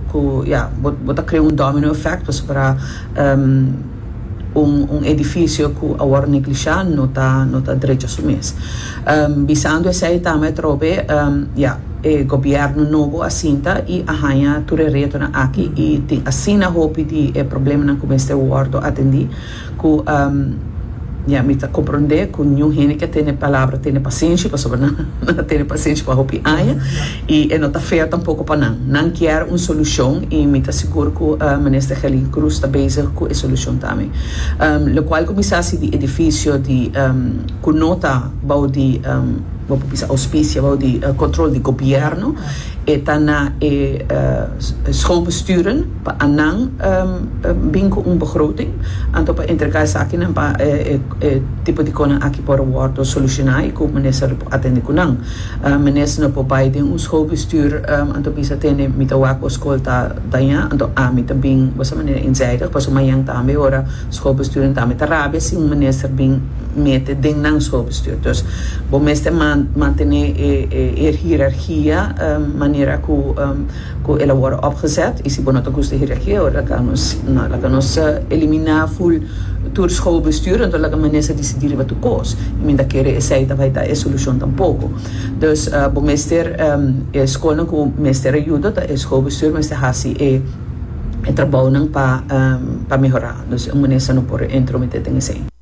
Cu ya, bo bo ta crea un domino effect pasobra un un edificio cu a worde neglisha no ta no ta drecha su mes. Bisando esey tama e trobe ya, e gobierno nobo a sinta y a hanja tur e retonan aki y tin asina hopi di e problemanan cu mester wordo atendi. Cu, ya, mi ta comprende cu niun hende ke tene palabra tene pasenshi, pasobra nan a tene pasenshi pa hopi aña, y e no ta fea tampoco pa nan. Nan kier un solucion, y mi ta sigur cu Minister Gelin Cruz ta bezig cu e solucion tambe. Locual cu mi sa si di edificio di, cu no ta bao di, bo por bisa auspicia, bao di control di Gobierno, e ta na e schoolbesturen. Pa a nan bin cu un begroting, anto pa entrega esakinan pa e tipo di conan aki por wordo soluciona y cu minister lo por atende cu nan. Minister no por bay den un schoolbestuur anto bisa tende mi ta wak bo school ta daña, anto ami ta bin bo sa manera inzijdig, paso mañan tambe ora schoolbestuurnan ta mi ta rabia si un minister bin mete den nan schoolbestuur. Dus bo mester mantene e hierarchia manera cu. ku el a wòrdu opgezet i si bo no ta gusta hira aki ora laga nos no laga nos eliminá ful tur schoolbestuur entos laga minister decidí riba tur kos i mi ta kere esei ta bai ta e solushon tampoko dus bo mester e schoolnan ku mester ayudo ta e schoolbestuur mester hasi e trabounan pa mehorá dus un minister no por intrometé den esei.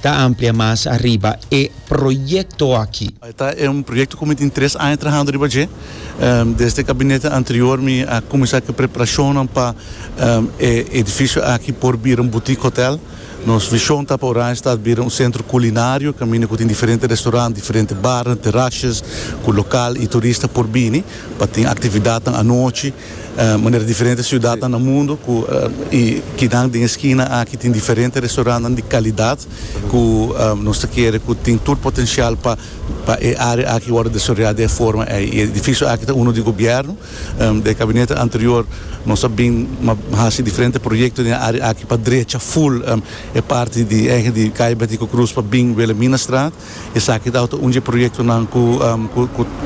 Ta amplia mas ariba e proyecto aki. Ta e un proyecto cu mi tin tres aña trahando riba dje. Desde e gabinete anterior mi a cuminsa cu e preparacionnan pa e edificio aki por bira un boutique hotel. Nos vision ta pa Oranjestad bira un centro culinario caminda cu tin diferente restaurant, diferente barnan, terrasjes cu local y turista por bini pa tin actividadnan anochi. Manera diferente siudatnan na mundu ku i kinan den e skina aki tin diferente restaurantnan di kalidat ku nos ta kere ku tin tur potenshial pa pa e área aki wòrdu desarrollá den e forma ei. I e edifisio aki ta uno di gobièrnu. Den e kabinete anterior nos a bin hasi diferente proyekto den e área aki pa drecha ful e parti di hègè di Kaya Bètico Krus pa bin Wilhelminastraat. Esaki tawata un dje proyektonan ku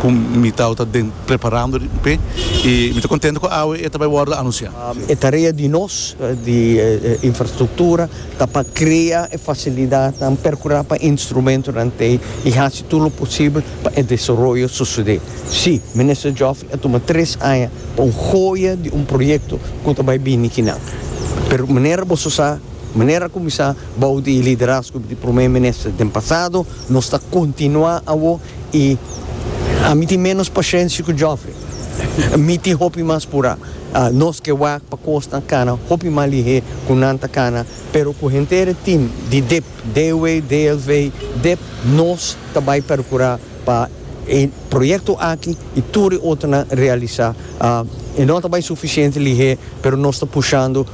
ku mi tawata den preparando di up'é i mi ta kontento ku awe e ta bai wòrdu anunsiá. E tarea di nos di infrastruktura ta pa krea e fasilidatnan, perkurá pa instrumentonan t'ei i hasi tur lo posibel pa e desaroyo sosodé. Sí, Minister Geoffrey a tuma tres aña pa un hoya di un proyekto ku ta bai bini kinan. Pero manera boso sa, manera a kuminsá. Bou di liderazgo di Prome Minister den pasado, nos ta kontinuá awo i ami tin ménos pashensia ku Geoffrey. Mi tin hopi mas purá. Nos ke wak pa kosnan kana hopi mas lihé ku nan ta kana, pero ku henter e tim di dip, DW, DLV, dip, nos ta bai perkurá. pa e proyekto aki i tur e otronan realisá. E no ta bai sufisiente lihé, pero nos ta pushando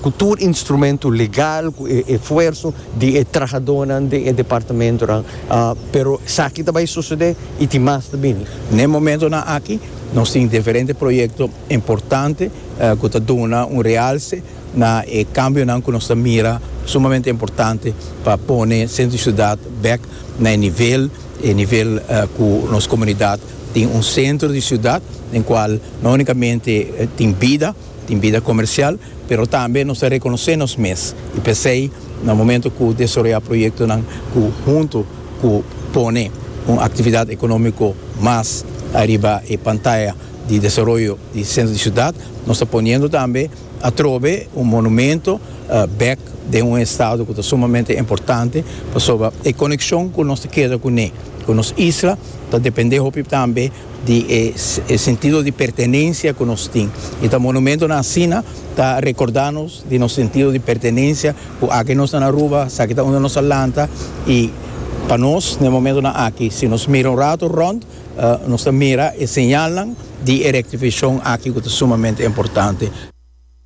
ku tur instrumentu legal, ku e efuerso di e trahadónan den e departamentunan, pero esaki ta bai sosodé i tin mas ta bini. Na e momentunan aki nos tin diferente proyekto importante ku ta duna un realse na e kambionan ku nos ta mira sumamente importante pa pone Sentro di Siudat bèk na e nivel e nivel ku nos komunidat tin un sentro di siudat den kual no unikamente tin bida tin bida komersial pero tambe nos ta rekonosé nos mes i p'esei na momento ku desaroyá proyektonan ku huntu ku pone un aktividat ekonomiko mas ariba e pantaya di desaroyo di sentro di siudat nos ta poniendo tambe Atrobe un monumento bek den un estado cu ta sumamente importante pasobra e coneccion cu nos ta keda cu ne, cu nos isla ta depende hopi tambe di e sentido di pertenencia cu nos tin y ta monumentonan asina ta recorda nos di nos sentido di pertenencia cu aki nos ta na Aruba, esaki ta unda nos a lanta y pa nos na e momentonan aki si nos mira un rato rond Nos ta mira e señalnan di e rectificacion aki cu ta sumamente importante.